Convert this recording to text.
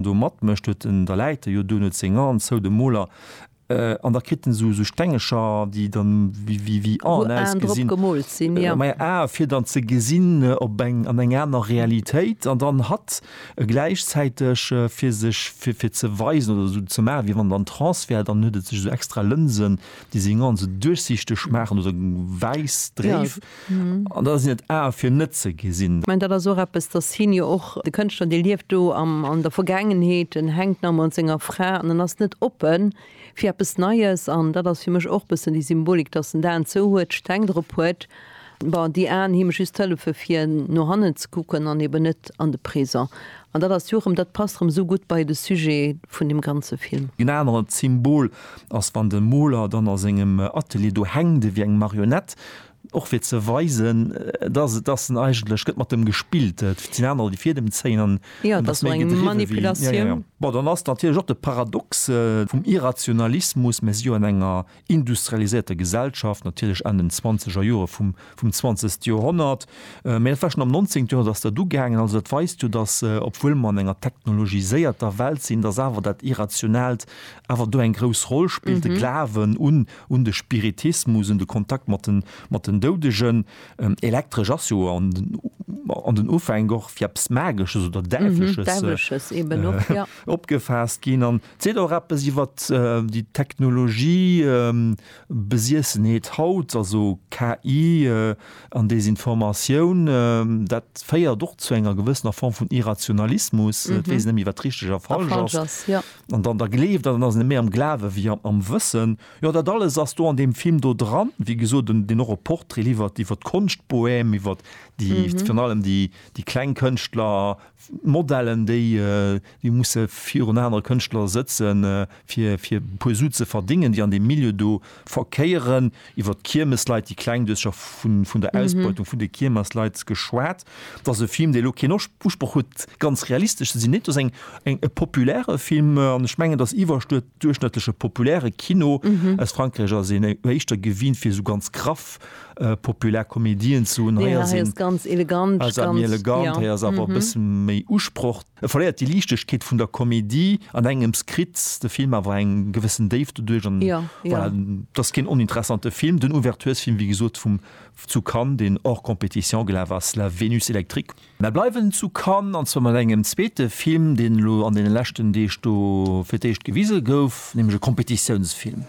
do matmécht, huet en der Läiter jo do net seng Hand zou, de Moler, an da kritt en esou esou Stengecher, déi dann wéi wéi wéi Aen ausgesinn, maja Ae fir dann ze gesinn op eng an eng aner Realitéit an dann hatt gläichzäiteg fir sech fir fir ze weisen oder esou ze maachen, wéi wann en an Trance wär, dann huet e sech esou extra Lënsen, déi seng Aen esou duerchsichteg maachen oder wäiss, dréif. An da sinn et Ae fir net ze gesinn. Ech mengen, dat ass och eppes, dass hien jo och, de Kënschtler, dee lieft do an der Vergaangenheet, en hänkt nach ëmmer un senger Fra an en ass net oppe fir eppes Neies. An dat ass fir mech och e bëssen déi Symbolik, dass en d'Aen zou huet, d'Steng drop huet, bon, déi Aen hu mech just hëllefe fir no hannen ze kucken an eben net an de Présent. An dat ass jo erëm, dat passt erëm esou gutt bei de Sujet vun deem ganze Film. En anert Symbol ass, wann de Moler dann a sengem Atelier do hänkt, ewéi eng Marionette, och fir ze weisen, dass et, dass en eigentlech gëtt mat em gespillt, et sinn anerer, déi fir em zéien an en ass méi gedriwwe wéi en. Ja, ja, ja. Bon, dann ass natierlech och de Paradox vum Irrationalismus, Mir si jo an enger industrialiséierter Gesellschaft, natierlech an den zwanzeger Jore vum, vum zwanzegste Joerhonnert, mä dat war schonn am nonzéngte Joerhonnert ass dat ugaangen. Also dat weist jo, dass, obwuel mer an enger technologiséierter Welt sinn, dass awer dat Irrationaalt awer do eng grouss Roll spillt, de Glawen un un de Spiritismus, un de Kontakt mat den, mat den Doudegen. Elektresch ass jo an den, an den Ufänk och fir eppes Magesches oder Däiwlesches. Däiwlesches eben och, ja. Opgefaasst ginn. An seet och eppes iwwer déi Technologie, Besiessenheet haut, also KI an Desinformatioun. Dat féiert och zu enger gewëssener Form vun Irrationalismus, et weess een net méi, wat richteg a falsch ass. A falsch ass, jo. an dann da gleeft an ass méi am Glawe wéi am Wëssen. Jo dat alles ass do an deem Film do dran, wéi gesot den deen och e Portrait liwwert iwwer d'Konschtbohème, iwwer déi virun allem déi déi kleng Kënschtler, d'Modellen déi déi musse virun anere Kënschtler sëtzen fir fir e puer Su ze verdéngen, déi an deem Milieu do Verkéieren, iwwert d'Kiermesleit, déi kleng Duercher vun der Ausbeutung vun de Kiermersleit geschwat. Et ass e Film, dee elo keen Usproch huet, ganz realistesch ze sinn. Nee, et ass eng, e populäre Film. An ech mengen, dass iwwerduerchschnëttleche populäre Kino aus Frankräich ass een éischter gewinnt, fir esou ganz graff populär Komedien ze hunn. Hei ass ee méi elegant, hei ass awer e bësse méi Usproch. E verléiert déi Liichtegkeet vun der Komedie an engems kritt de Film awer eng gewëssen Déift doduerch an voilà, et ass keen oninteressante Film. Den Ouverturesfilm, wéi gesot, vum zu Cannes, deen hors compétition gelaf ass, La Vénus électrique. Mä bleiwen zu Cannes, an zwar mat engem zweete Film, deen elo an deene leschten Deeg do fir d'éischt gewise gouf, nämlech e Competitiounsfilm.